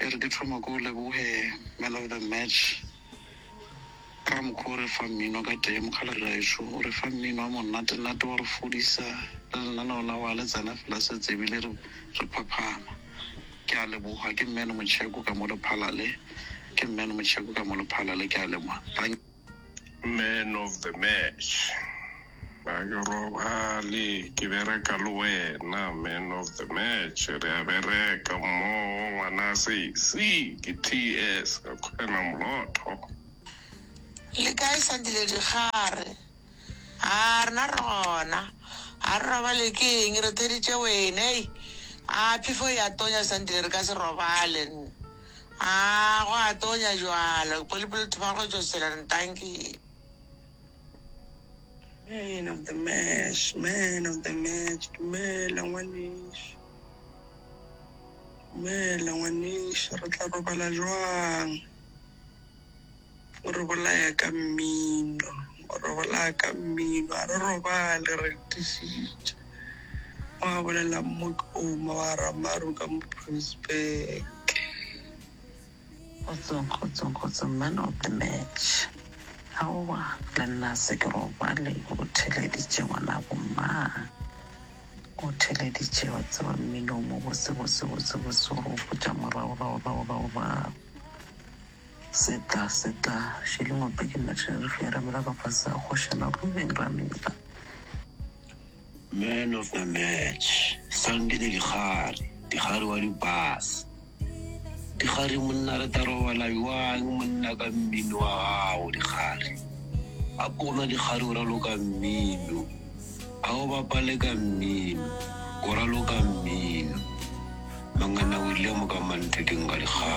E re ke thoma ke o leboge man of the match ka mokgwa o re fa mmino ka tee. Mokgalabje gaešo o re fa mmino wa monnatenate wa re fodisa le lenaneo la wa le tsena fela se tsebe le re re phaphama. Ke a leboga ke Mman Motšheko ka mo Lephalale ke Mman Motšheko ka mo Lephalale ke a leboga. Man of the match. Ga ke robale ke bereka le wena man of the match re a bereka mmogo ngwana sesi ke TS ka kgwena molotho. Le kae Sandile Digare? A rena re gona. A re robale ke eng re theditše wena ei. A phefo e a tonya Sandile re ka se robale. Aa, go a tonya bjalo. Ke polipoli le thoma go tšo šela ntanki. Man of the match, man of the match, dumela ngwanešu. Dumela ngwanešu, re tla robala jwang? O re bolaya ka mmino. O re bolaya ka mmino. A re robale re tišitše. Gwa bolela Mmotloma wa Ramaru ka Moprosbeke. Kgotsong, kgotsong, kgotsong, man of the match. Aowa, le nna a se ke robale. O theleditše ngwanabo mang? O theleditše, wa tseba, mmino wo mobose, bose, bose, bose, o re gopotša morago, rago, rago, rago, rago. Se tla, se tla, šeleng wa peke nna tšherifi ya ramela ka fase a kgoša na go beng ramela. Man of the match, Sandile Dikgari, Dikgari wa di bass. Dikgari monna re tla robala bjang monna ka mmino wa gago Dikgari. A ko gona Dikgari o raloka mmino, a o bapale ka mmino, o raloka mmino. Mangana o rile mo ka manteding ka Dikgari.